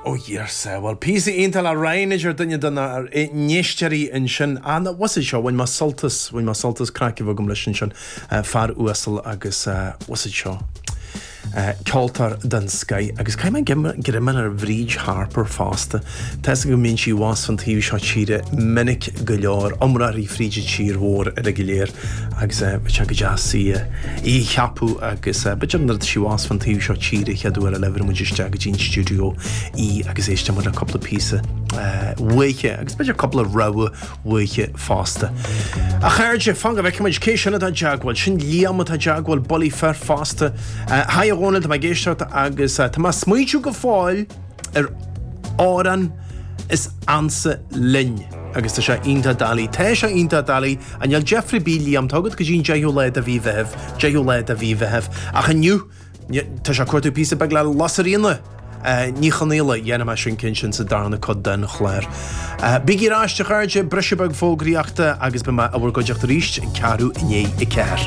Ó a dhuine sa! Bhuel, píosa iontach do na héisteoirí ansin. An bhfuil a fhios agat seo, bhain mé sult as, bhain mé sult as, craic a bhí agam leis ansin. Fear uasal agus, bhfuil a fhios agat seo, ceoltóir den scoith. Agus caithfidh mé greim a fháil ar Bhríd Harper fosta. Tá a fhios agam go mbíonn sí ar an taobh seo tíre minic go leor, iomráiteach fríd an tír mhór uile go léir, agus bheadh sé go deas í a cheapadh agus b'fhéidir nuair atá sí ar an taobh seo tíre an chéad uair eile gheobhaidh muid isteach go dtí an stiúideo í agus éistfidh muid le cúpla píosa uaithi agus b'fhéidir cúpla rogha uaithi fosta. A chairde, fan go bhfeicfidh muid cé sin atá i dteagmháil. Sin Liam atá i dteagmháil, bulaí fir fosta. Haigh a Dhónaill, tá mé ag éisteacht agus tá mé ag smaointiú go fóill, ar amhráin is ansa linn agus tá sé iontach doiligh. Tá sé iontach doiligh. Á, níl deifre ar bith a Liam tá agat go dtí an 10ú lá de mhí Mheithimh, 10ú lá de mhí Mheithimh. Ach inniu, tá sé ag cuartú píosa beag le Lasairfhíona Ní Chonaola, dhéanfaidh mé sin cinnte sa darna cuid den chlár. Bígí ag éisteacht, a chairde, briseadh beag fógraíochta agus beidh mé i bhur gcuideachta arís ag ceathrú i ndiaidh a ceathair.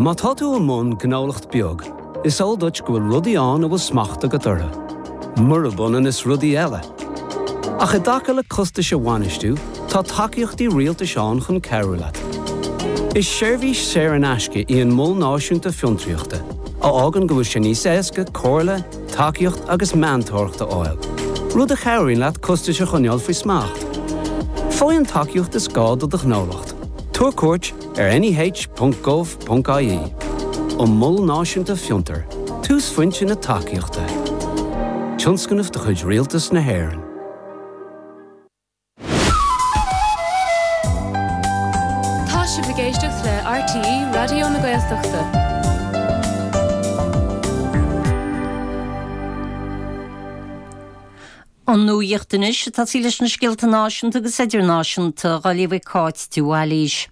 Má tá tú i mbun gnólacht beag, is eol duit go bhfuil rudaí ann a bhfuil smacht agat orthu, murab ionann is rudaí eile. Ach i dtaca le costais a bhainistiú, tá tacaíochtaí rialtais ann chun cabhrú leat. Is seirbhís saor in aisce í an Mol Náisiúnta Fiontraíochta, a fhágann go bhfuil sé níos éasca comhairle, tacaíocht agus meantóireacht a fháil, rud a chabhraíonn leat costais a choinneáil faoi smacht. Faigh an tacaíocht is gá do do ghnólacht. Tabhair cuairt ar neh.gov.ie An Mol Náisiúnta Fiontar, túsphointe na tacaíochta. Tionscnamh de chuid Rialtas na hÉireann. Tá sibh ag éisteacht le RTÉ Raidió na Gaeltachta. Ón Nuaíocht anois atá siad leis na scéalta náisiúnta agus idirnáisiúnta dhá léamh ag Cáit de Bhailís.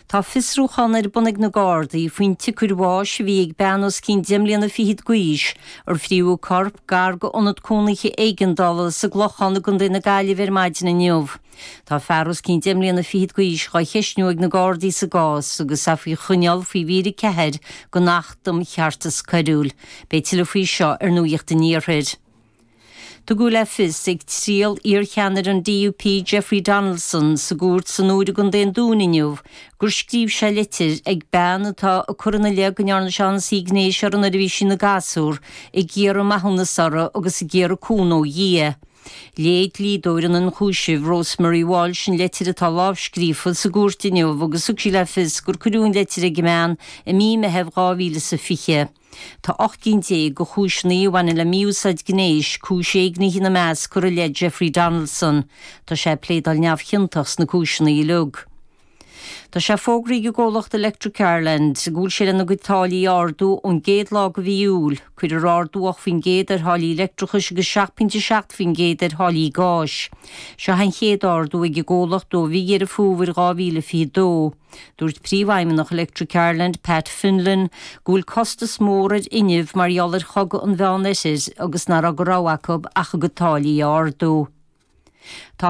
Tá fiosrúchán ar bun ag na Gardaí faoin tsiocair bháis a bhí ag bean os cionn deich mbliana fichead d'aois, ar frítheadh a corp gar go ionad cónaithe éigeandála sa gClochán i gContae na Gaillimhe ar maidin inniu. Tá fear os cionn deich mbliana fichead d'aois dhá cheisniú ag na Gardaí sa gcás agus é faoi choinneáil faoi mhír 4 den Acht um Cheartas Coiriúil. Beidh tuilleadh faoi seo ar Nuaíocht an Iarthair. Tugadh le fios ag triail iarcheannaire an DUP Jeffrey Donaldson sa gcúirt san Iúr i gContae an Dúin inniu gur scríobh sé litir ag bean atá ag cur ina leith go ndearna sé ionsaí gnéis uirthi nuair a bhí sí ina gasúr ag iarraidh maithiúnas uirthi agus ag iarraidh cúnamh ó Dhia. Léigh dlíodóir an ionchúisimh, Rosemary Walsh an leitir atá lámhscríofa sa gcúirt inniu agus thug sí le fios gur cuireadh an leitir ag an mbean i mí Meithimh 2020. Tá ocht gcinn déag de chúiseanna a bhaineann le mí-úsáid gnéis, cúis éignithe ina measc, curtha i leith Jeffrey Donaldson. Tá sé ag pléadáil neamhchiontach sna cúiseanna uilig. Tá sé fógraithe ag an gcomhlacht Electric Ireland go bhfuil sé lena gcuid táillí a ardú ón gcéad lá de mhí Iúil. Cuirfear ardú 8% ar tháillí leictreachais agus seacht bpointe a seacht faoin gcéad ar tháillí gáis. Seo an chéad ardú ag an gcomhlacht ó mhí Dheireadh Fómhair 2022. Dúirt Príomhfheidhmeannach Electric Ireland, Pat Fenlon, go bhfuil costas mór ar fhuinneamh mar gheall ar chogadh an Mheánoirthir agus nach raibh de rogha acu ach a gcuid táillí a ardú. Tá.